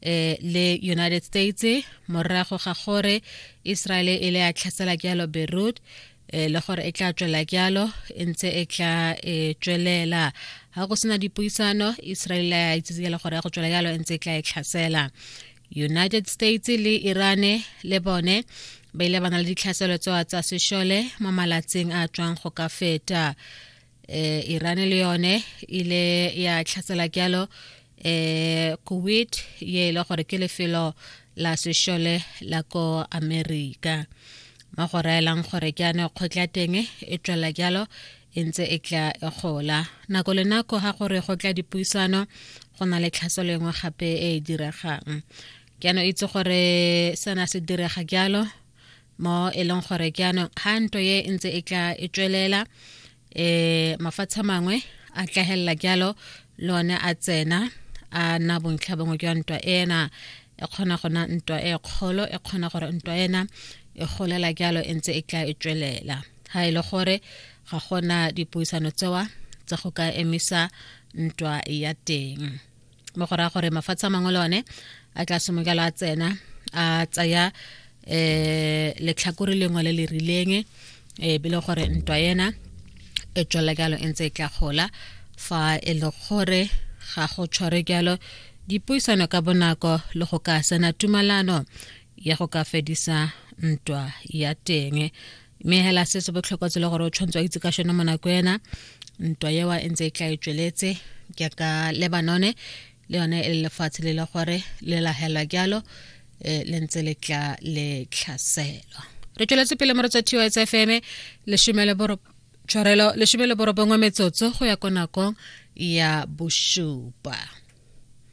eh le United States morago ga gore Israel e le a tlhasela jalo Beirut eh le gore e tla tswela jalo e ntse e tla e tswelela ga go sena dipuisano Israel ya itsitse jalo gore ya go tswela jalo e ntse e tla e tlhasela United States le Irane le bone ba ile ba na le ditlhaselo tsoa tsa sešole mo malatsing a tswang go ka feta eh Iran le yone ile ya tlhatsela kyalo eh Kuwait ye ile e gore ke lefelo la sešole la ko America mo go raelang gore ke ane kgotla teng e tswela kyalo e ntse e tla e gola nako le nako ga gore go tla dipuisano go na le tlhaso lengwe gape e e diregang ke ano itse gore sena se direga kyalo mo e leng gore ke anong ga nto ye e ntse e tla e tswelela eh mafatsha mangwe a tlahelela jalo le one a tsena a na bontlha bongwe jwa ntwa ena e kgona go na ntwa e kgolo e kgona gore ntwa ena e golela jalo e ntse e tla e tswelela ga e le gore ga gona dipuisano tsewa tsa go ka emisa ntwa ya teng mo go raya gore mafatshe a mangwe le one a tla simokela a tsena a tsaya um letlhakore lengwe le le rileng um e le gore ntwa ena e tswela jalo e ntse e tla gola fa e le gore ga go tshware jalo dipuisano ka bonako le go ka sena tumalano ya go ka fedisa ntwa ya teng mme hela se se botlhokwa tsele gore o tshwanetse wa itse ka shone mo nako ena ntwa ewa e ntse e tla e tsweletse ke ka lebanone le yone e lefatshe le le gore le lahelwa jalo eh, le ntse le tla le tlhaselwa re tsweletse pele mo re tswa tsa fm lesome le boro tshwarelo lesome le borobongwe metsotso go ya ko nakong ya bosupa